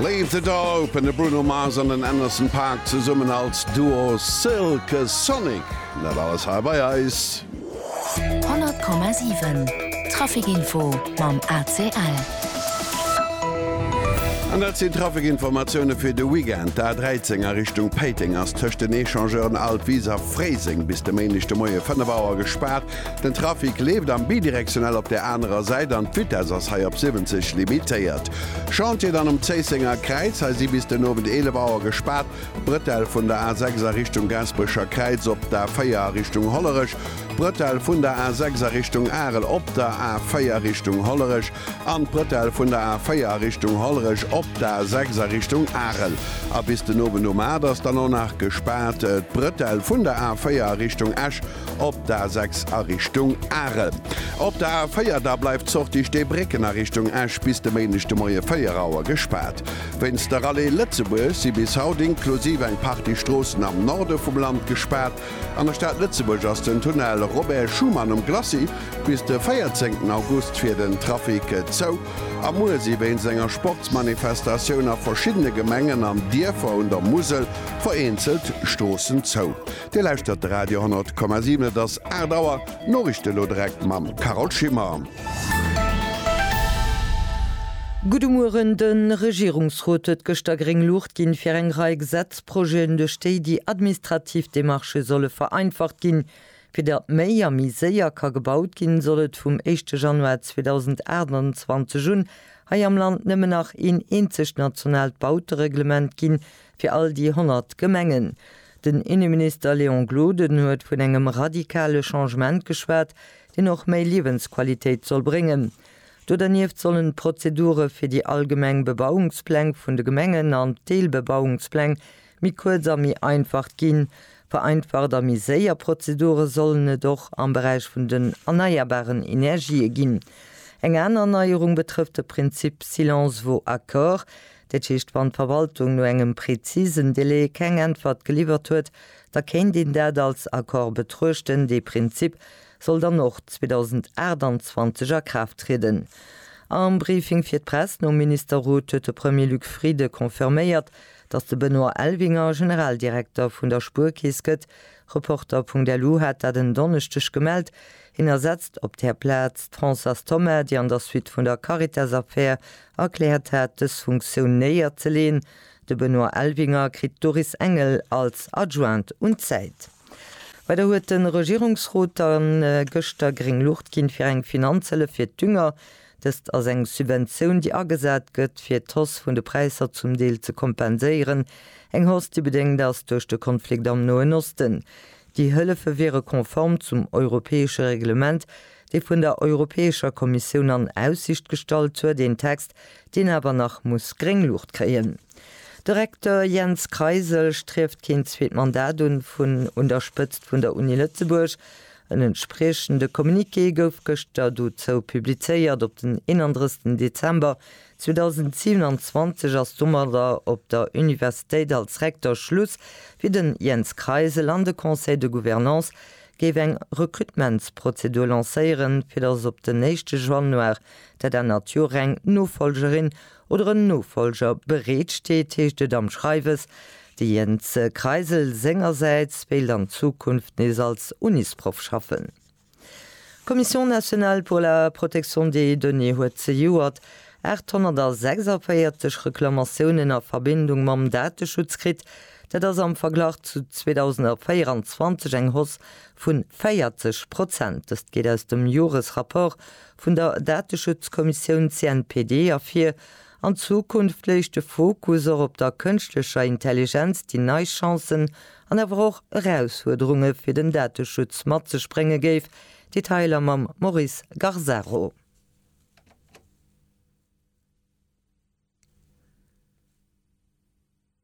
Leave the Door Open, de Bruno Mars an den Anderson Paak zesummen als Duo Silk Sonic, dat alles hei bei eis. 100,7 Trafic Info mam ACL. An dat sinn d'Trafic-Informatioune fir de Weekend. D'A13 a Richtung Péiteng ass tëscht den Echangeuren Altvise a Fréiseng bis de Méindeg de Moie 5 Auer gespaart. Den Trafic leeft am Bidirektionell op der anerer Säit an d'Vitess ass hei op 70 limitéiert. Chantier dann um Zéissenger Kräiz, hei si bis den Owend 11 Auer gespaart d'Brëtell vun der A6 a Richtung Gaasperecher Kräiz, op d'A4 a Richtung Hollerech d'Brëtell vun der A6 a Richtung Arel, op der A4 Richtung Hollerech an d'Brëtell vun der A4 a Richtung Hollerech op d'A6 a Richtung Arel. A bis den Owend um 8 ass dann och nach gespaart d'Brëtell vun der A4 a Richtung Esch. Op der A 6 a Richtung Are. Op der A 4 da bleift d'Sortie Steebrécken a Richtung Esch bis de Méindeg de Moie 4 Auer gespaart. Wéinst der Rallye Lëtzebuerg si bis haut inklusiv eng Partie Stroossen am Norde vum Land gespaart. An der Stad Lëtzebuerg ass den Tunnel Robert Schuman um Glacis bis de 14 August fir den Trafic zou. A muer si wéinst enger Sportsmanifestatioun a verschiddene Gemengen an Dierfer un der Musel vereenzelt Stroossen zou. Dir lauschtert de Radio 10,7, et ass 8 Auer. D'Noriichte elo direkt mam Carole Schimmer. Gudde Mueren, De Regierungsrot huet gëschter gréng Luucht ginn, fir eng Rei Gesetzprojeten, duerch déi déi administrativ Demarchë solle vereinfacht ginn. Fir datt méi a méi séier ka gebaut ginn, soll et vum éischte Januar 2028 un hei am Land nëmmen nach een eenzegt nationaalt Bautereglement ginn, Fir all déi 100 Gemengen. Den Inneminister Léon Gloden huet vun engem radikale Changement geschwat, deen och méi Liewensqualitéit soll bréngen. Do dernieft sollen d'Prozedure fir déi allgemeng Bebauungspläng vun de Gemengen an d'Deelbebauungspläng méi kuerz a méi einfacht ginn. Vereinfacht a méi séier Prozedure sollen et och am Beräich vun den erneierbaren Energië ginn. Eng aner Neierung betrëfft de Prinzip Silence vaut accord. Dat heescht, wann d'Verwaltung no engem prezisen Delai keng Äntwert geliwwert huet, da kéint een dat als Accord betruechten. Dee Prinzip soll dann och 2028 a Kraaft trieden. Am Briefing fir d'Press nom Ministerrot huet de Premier Luc Frieden confirméiert, datt de Benoît Elvinger Generaldirekter vun der Spuerkeess gëtt. Reporter. LU hat dat en Donneschdeg gemellt. Hien ersetzt op där Plaz d'Françoise Thoma, déi an der Suite vun der Caritas-Affär Erkläert hat, dës Funktioun néier ze leen. De Benoît Elvinger kritt d'Doris Engel als Adjointe un d'Säit. Weider huet de Regierungsrot dann gëschter gréng Luucht ginn, fir eng Finanzhëllef fir d'Dünger. Dëst ass eng Subventioun, déi agesat gëtt, fir d'Hausse vun de Präisser zum Deel ze kompenséieren. Eng Hausse, déi bedéngt ass duerch de Konflikt am Noen Osten. Déi Hëllefe wiere konform zum europäesche Reglement, dee vun der Europäescher Kommissioun an Aussicht gestallt huet, een Text, deen awer nach muss gréng Luucht kréien. De Recteur Jens Kreisel strieft keen zweet Mandat un vun un der Spëtzt vun der Uni Lëtzebuerg. En entspriechende Communiqué gouf gëschter dozou publizéiert. Op den 31 Dezember 2027 ass domadder op der Universitéit als Recteur Schluss fir de Jens Kreisel an de Conseil de Gouvernance, géif eng Recrutementsprozedur lancéieren, fir datt op den éischte Januar der der Natur eng Nofolgerin oder en Nofolger bereet steet, heescht et am Schreiwes. De Jens Kreisel sengersäits wéilt an Zukunft nees als Unisproff schaffen. D'Commission nationale pour la protection des données huet zejoert 846 Reklamatiounen a Verbindung mam Dateschutz kritt. Dat ass am Verglach zu 2024 eng Hausse vu 40 Prozent. Dëst geet aus dem Joresrapport vun der Dateschutzkommissioun CNPD ervir. An Zukunft léich de Fokus och op der kënschtlecher Intelligenz, déi nei Chancen an awer och Erausfuerderunge fir den Dateschutz mat sech brénge géif. Detailer mam Maurice Garzaro.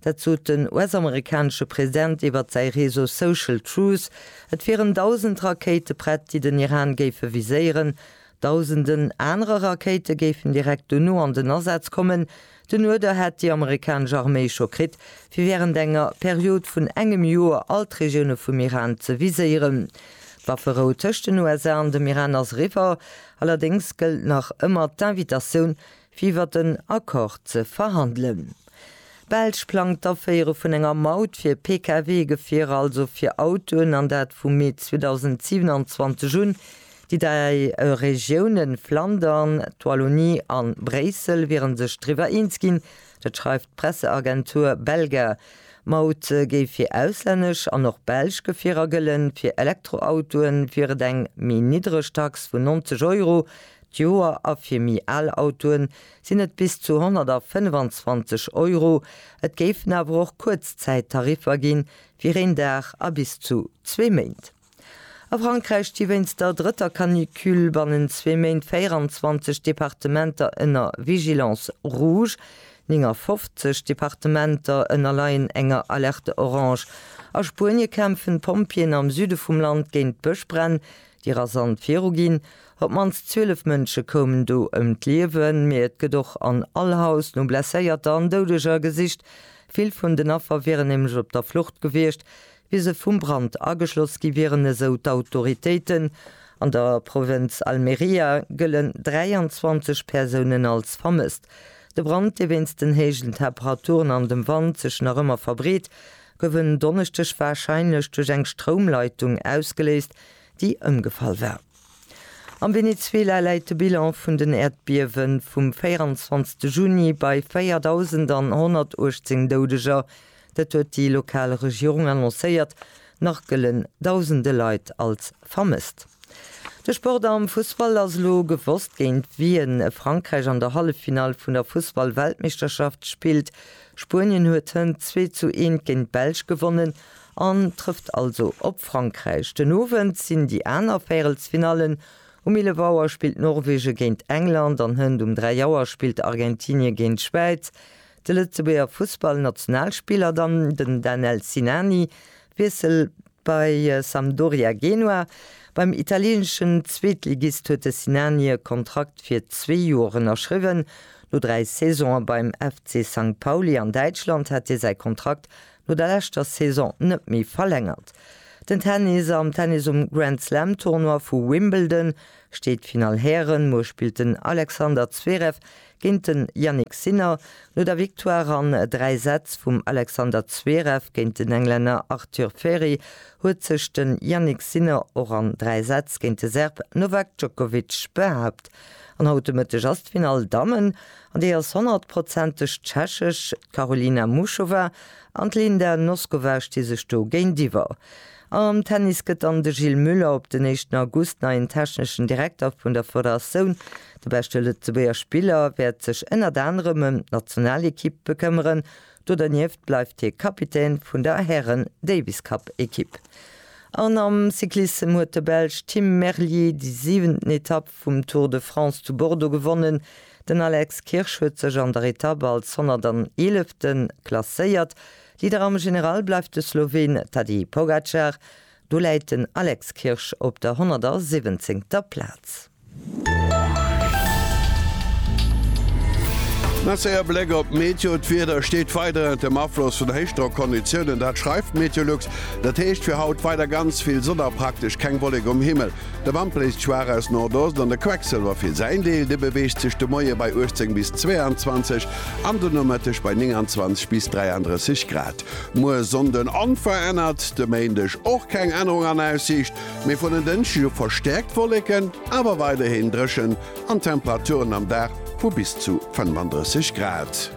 Dat sot den US-amerikanesche President iwwert säi Réseau Social Truth. Et wieren dausend Rakéite prett, déi den Iran géife viséieren. Dausenden anere Rakéite géifen direkt dono an den Asaz kommen. Den Uerder hätt déi amerikanesch Arméi scho kritt, fir wärend enger Period vun engem Joer all d'Regioune vum Iran ze viséieren. D'Wafferou tëscht den USA an dem Iran ass eriwwer. Allerdéngs gëllt nach ëmmer d'Invitatioun, Iwwert en Accord ze verhandelen. D'Belsch plangt d'Aféiere vun enger Maut fir Pkw-Gefierer, also fir Autoen, an dat vu Mee 2027 un. Déi dräi Regiounen Flandern, d'Wallonie a Bréissel wiere sech driwwer eens ginn. Dat schreift d'Presseagentur Belga. D'Maut géif fir auslännesch an och belsch Gefierer gëllen. Fir Elektroautoe wier et eng méi niddreg Tax vun 90 Euro. d'Joer a fir méi al Autoen sinn et bis zu 125 Euro. Et géifen awer och Kuerzzäittariffer ginn, fir een Dag a bis zu zwee Méint. A Frankräich sti wéinst der drëtter Canicule bannent zwee Méint 24 Departementer ënner Vigilance rouge, 59 Departementer ënnerleien enger Alerte orange. A Spuenie kämpfen d'Pompjeeën am Süde vum Land géint Bëschbränn, Déi rasant viruginn. Op d'mannst 12 Mënsche koumen do ëm d'Liewen, mee et gëtt och an all Haus no Blesséierter an Doudeger gesicht. Vill vun den Affer wieren nämlech op der Flucht gewiescht, wéi se vum Brand ageschloss gi wieren, esou d'Autoritéiten. An der Provënz Almería gëllen 23 Persounen als vermësst. De Brand, dee wéinst den héijen Temperaturen an dem Wand sech nach ëmmer verbreet, gouf en Donneschdeg warscheinlech duerch eng Stroumleitung ausgeléist, déi ëmgefall war. Am Venezuela läit de Bilan vun den Äerdbiewe vum 24 Juni bei 4.118 Doudeger, dat huet déi lokal Regierung annoncéiert, nach gëllen dausende Leit als vermësst. De Sport am Fussball, Ass elo gewosst géint wien Frankräich an der Halleffinall vun der Fussball-Weltmeeschterschaft spillt? Spuenien huet hënt 2 zu 1 géint d'Belsch gewonnen an trëfft also op Frankräich. Den Owend sinn déi aner Véierelsfinallen, Um 11 Auer spillt Norwegen géint England an hënt um 3 Auer spillt Argentinien géint d'Schwäiz. De Lëtzebuerger Fussball-Nationalspiller dann den Danel Sinani Wiessel bei Sampdoria Genua. Beim italieeneschen Zweetligist huet de Sinani e Kontrakt fir zwee Joer ënnerschriwwen. No dräi Saisone beim FC Sankt Pauli an Däitschland hat hie säi Kontrakt no der leschter Saison net méi verlängert. Den Tennis Am Tennis um Grand Slam Tournoi vu Wimbledon steet d'Finall Hären. Muer spillt den Alexander Zverev Géint den Jannik Sinner, no der Victoire an 3 Sätz vum Alexander Zverev géint den Englänner Arthur Feri, huet sech den Jannik Sinner och an 3 Sätz géint de Serb Novak Djokovic behaapt. An haut de Mëtteg ass d'Finall Dammen, an déi ass honnertprozenteg tschechesch. D'Karolina Muchova an d'Linda Noskova sti sech do géintiwwer. Am Tennis gëtt dann de Gilles Muller op den éischten August neien techneschen Direkter vun der Federatioun. De beschte Lëtzebuerger Spiller wäert sech ënnert anerem ëm d'Nationalekipp bekëmmeren. Do dernieft bleift hie Kapitän vun der Hären-Davis-Cup-Ekipp. An am Cyclissem huet de Belsch Tim Merlier déi siwenten Etapp vum Tour de France zu Bordeaux gewonnen. Den Alex Kirsch huet sech an der Etapp als 111. klasséiert. Leader am General bleift de Sloween Tadej Pogacar, do läit den Alex Kirsch op der 117. Plaz. Merci a Bléck op d'Meteo, D'Wieder steet weider ënnert dem Afloss vun Héichdrockonditiounen, dat schreift Meteolux. Dat heescht fir haut weider ganz vill Sonn a praktesch keng Wollek um Himmel. De Wand bléist schwaach aus Nordost an de Quecksilwer fir säin Deel, dee beweegt sech de Moie bei 18 bis 22 an de Nomëtteg bei 29 bis 33 Grad. Muer Sonnden onverännert, de Méindeg och keng Ännerung an Aussiicht, mee vun en Dënschdeg u verstäerkt Wolleken, awer weiderhin dréchen an Temperaturen am Dag vu bis zu 35 Grad.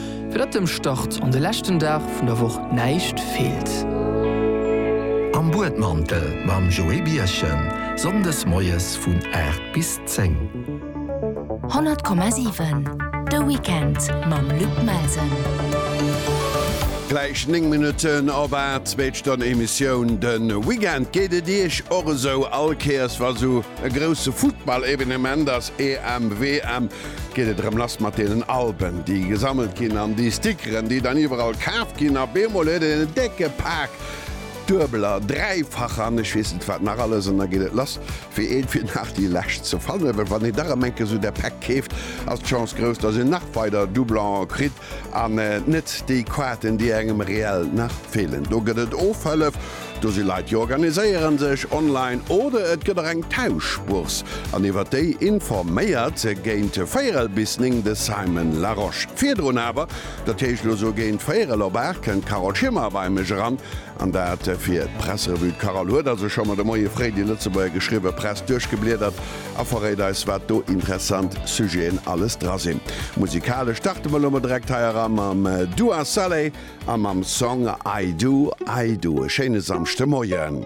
Fir datt dem Start an de leschten Dag vun der Woch näischt feelt. Am Buedmantel mam Joé Birchen, Sonndes moies vun 8 bis 10. 100,7 De Weekend mam Luc Melsen. Gläich 9 Minutten op 8, zweet Stonn Emissioun de Weekend. Geet et Iech och esou? All Kéiers wa sou e grousse Futtball-Evenement ass, EM, WM, geet et erëm lass mat deenen Alben, déi gesammelt ginn an déi Stickeren, déi dann iwwerall kaaft ginn. A beemol huet een en décke Pak duebeler, dräifacher an ech weess net wat nach alles an da geet et lass fir een fir nach déi lescht ze fannen. Well wann een dach erëm eng Kéier esou där Päck keeft, ass d'Chance grouss, dass een nach weider Doublongen kritt. An net déi Quaten, déi engem reell nach feelen. Do gëtt et Ofhëllef, do si Leit, déi organiséieren sech online oder et gëtt och eng Tauschbourse, an iwwer déi informéiert géint véierel bis néng de Simon Larosche. Virdrun awer, dat heescht elo sou géint véierel op aacht, kënnt d'Carole Schimmer bei mech eran, an dat fir d'Presserevue. D'Carole huet also scho mer de Moie fréi déi Lëtzebuerger geschriwwe Press duerchgebliedert a verréit eis wat do interessant Sujeten alles dra sinn. Musikalesch starte mer lo mol direkt hei era mam Dua Saleh a mam Song I Do, I Do. E schéine Samschdemoien.